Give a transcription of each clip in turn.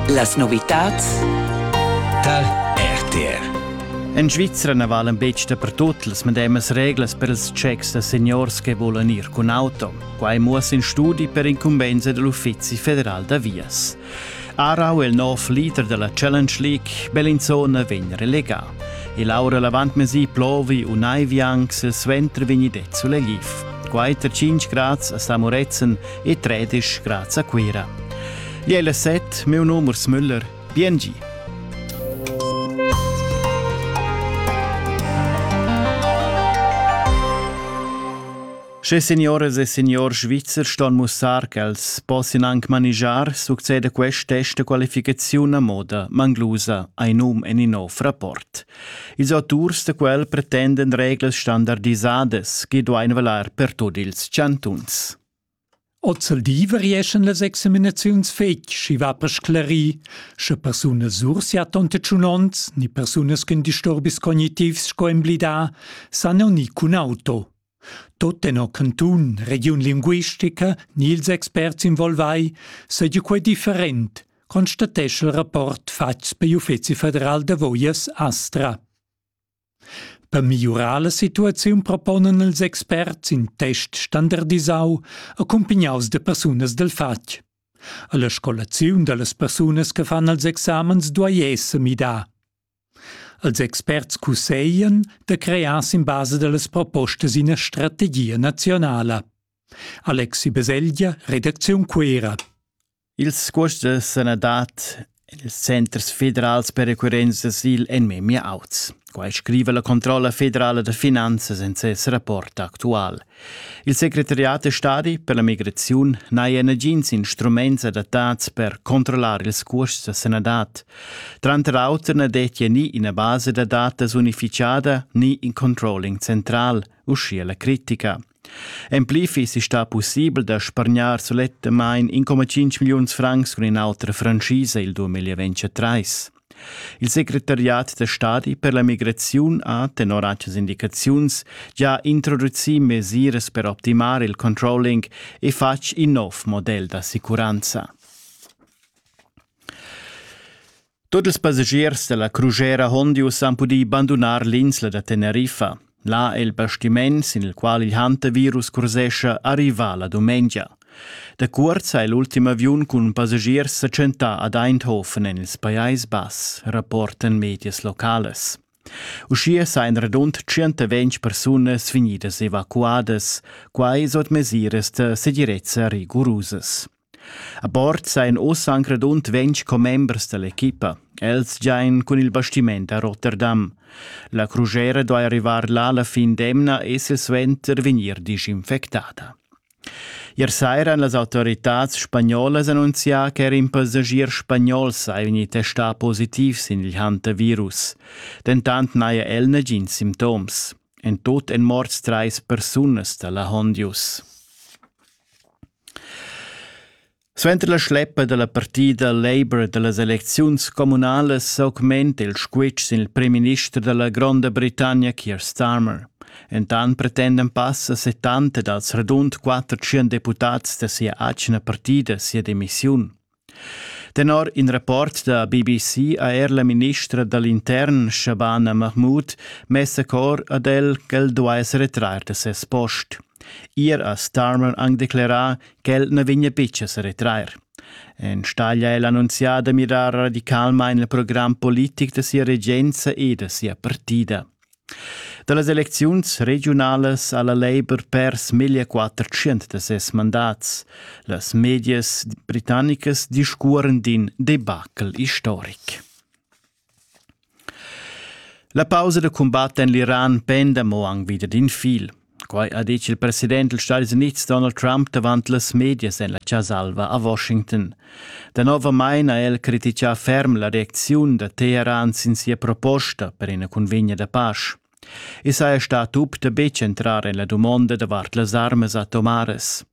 Las novitads tar RTR. En Svizra na valen betg dapertut las medemas reglas per ils checks da seniors che volan ir cun auto. Quai muossa in studi per incumbensa dell'Uffizi federal da vias. Arau, il nov leader della Challenge League, Bellinzona vegn relegà. E Laura Lavantmesi plovi un ai vianc sil suenter vegni det sulla gif. Quai tar 5 grads a Samoretzen e tredisch graz a Cuira. Liela set, meu nom Urs Müller, BNG. Sche signoras e signor svizzer ston mussar ch'els possian anc manigiar, succeda quest test da qualificaziun a moda manglusa ein num en in nov rapport. Ils auturs da quel pretenden reglas standardisadas che duein valer per tut ils chantuns. Ozzeldi varieschan las examinaziuns fetg, schi va per sclarir, sche persunas sursiatton tetschunonts ni persunas cun disturbis cognitivs sco emblidà san u ni cun auto. Tot tenor cantun, regiun linguistica ni ils experts involvai seigi quei different, constatescha il rapport fatgs per l'Uffeci federal da voias Astra. Per migliurar la situaziun proponan ils experts in test standardisau accumpignaus da persunas dal fatg. Alla scolaziun dallas persunas che fan els examens duai esser midà. Els experts cusseglan da crear sin basa dallas propostas ina strategia nazionala. Alexi Beselgia, redacziun Cuera. Ils cuosts da sanadad ils centers federals per occurrenza d'asil èn memia auts. Quai scriva la controlla federala da finanzas en ses rapport actual. Il secretariat da stadi per la migraziun n'haja nagins instruments adattads per controllar ils cuosts da sanadad. Tranter auter na dettia ni ina basa da datas unificada ni in controlling central, uschia la critica. En pli fissi stà pussibel da spargnar sulettamain 1,5 milliuns francs cun in'autra franschisa il 2023. Il secretariat da stadi per la migraziun ha, tenor actas indicaziuns, già introducì mesiras per optimar il controlling e fatg in nov model d'assicuranza. Tut ils passagiers dalla crusera Hondius han pudì bandunar l'insla da Teneriffa. Là è il bastiment, sin il qual il hantavirus cursescha, arrivà la dumengia. Da cuort ha l'ultim aviun cun passagiers sa tschentà ad Eindhoven en il Pajais Bass, rapportan medias locales. Uschia sajan radund 120 persunas vegnidas evacuadas, quai sut mesiras da segirezza rigurusas. A bord sajan oz anc radund ventg commembers da l'equipa. Els giain cun il bastiment a Rotterdam. La crugera duai arrivar là la fin d'emna e silsuenter vegnir disinfectada. Ier saira han las autoritads spagnolas annunzià ch'er in passagier spagnol sei vegnì testà positiv sin il hantavirus. Dentant n'haja el nagins simptoms. En tut èn morts trais persunas da la Hondius. Suenter la schleppa dalla partida Labour dallas elecziuns communalas s'augmenta il squitsch sin il primminister dalla Gronda Britannia Keir Starmer. Entant pretendan passa 70 dals radund 400 deputads da sia atgna partida sia demissiun. Tenor in rapport da BBC ha er la ministra da l'intern Shabana Mahmood mess a cor ad el ch'el duai sa retrair da ses post. Ier ha Starmer anc declerà ch'el na vegnia betg a sa retrair. Enstagl è el annunzià da mirar radicalmain il program politic da sia regenza e da sia partida. Da las elecziuns regiunalas ha la Labour pers meglio 400 da ses mandats. Las medias britannicas discuoren d'in debacle istoric. La pausa da cumbat en l'Iran penda mo anc wieder d'in fil. Quai ha ditg il president dals Stadis Unids Donald Trump davant las medias en la Chasa-alva a Washington. Danovamain ha el crititgà ferm la reacziun da Teheran sin sia proposta per ina cunvegna da pasch. I saja stà tup da betg entrar en la dumonda davart las armas atomaras.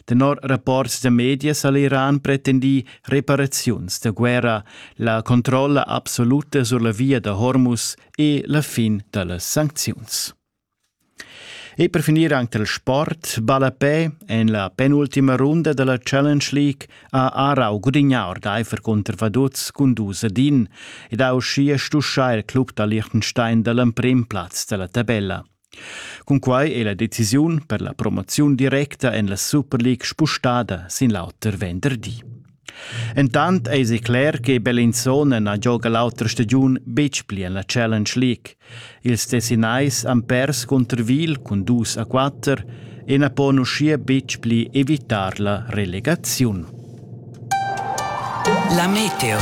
Tenor rapports da medias ha l'Iran pretendì reparaziuns da guerra, la controlla absoluta sur la via da Hormuz e la fin da las sancziuns. E per finir anche il sport. Ballapè en la penultima runda della Challenge League ha Aarau gudignà ordaifer cunter Vaduz cun dus ad in ed ha uschia stuschà il club da Liechtenstein dall'emprim plaz della tabella. Cunquai è la decisiun per la promoziun directa en la Super League spustada sin l'auter venderdi. Entant eisi cler che Bellinzona na gioga l'autra stagiun betg pli en la Challenge League. Ils Tessinais han pers cunter Wil cun dus a quatter e na pon uschia betg pli evitar la relegaziun. La Meteo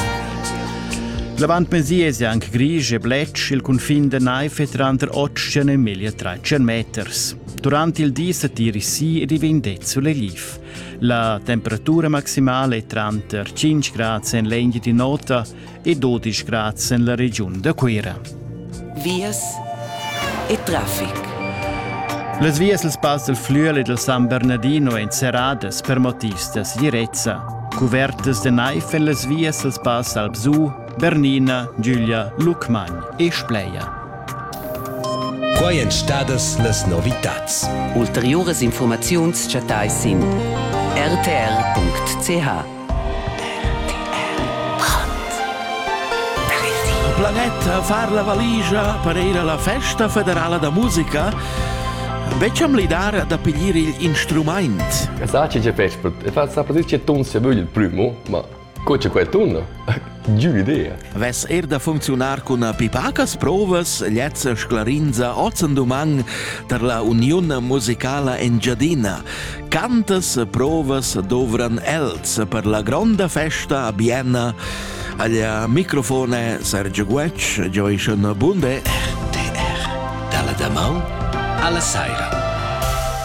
L'avantmezdi è anche grisch e bletsch il cunfin da Naife tranter 8 e meglio 300 meters. Durante il di satiri si ed i vende sulle Leaf. La temperatura maximale è tranter 5 grad en l'Engia di Nota e 12 grad en la regiun da Cuira. Vias e traffic. Las vias dal Pass del Flüel e del San Bernardino èn serradas per motivs da segirezza. Cuvertas de naiv en las vias dals pass Alpsu Bernina, Giulia, Lucmagn e Spleia. Quai èn stadas las novitads. Ulteriuras infurmaziuns chattais sin rtr.ch. Planeta far la valigia per ir alla festa federala da musica Becciam lidar da piglier il instrumaint. Sa che Peschpert e fa sa posizione ton se vögl il primo, ma Co c'è quel tunnel? Giù idea. Vess er da funcziunar cun pipacas provas, lezza sclarinza ozzen duman tar la Uniun musicala Engiadina. Cantas provas dovran els per la gronda festa a Bienna? Agli microfone Sergio Guetsch, Joyson Bunde, RTR. Dalla da Alla Saira.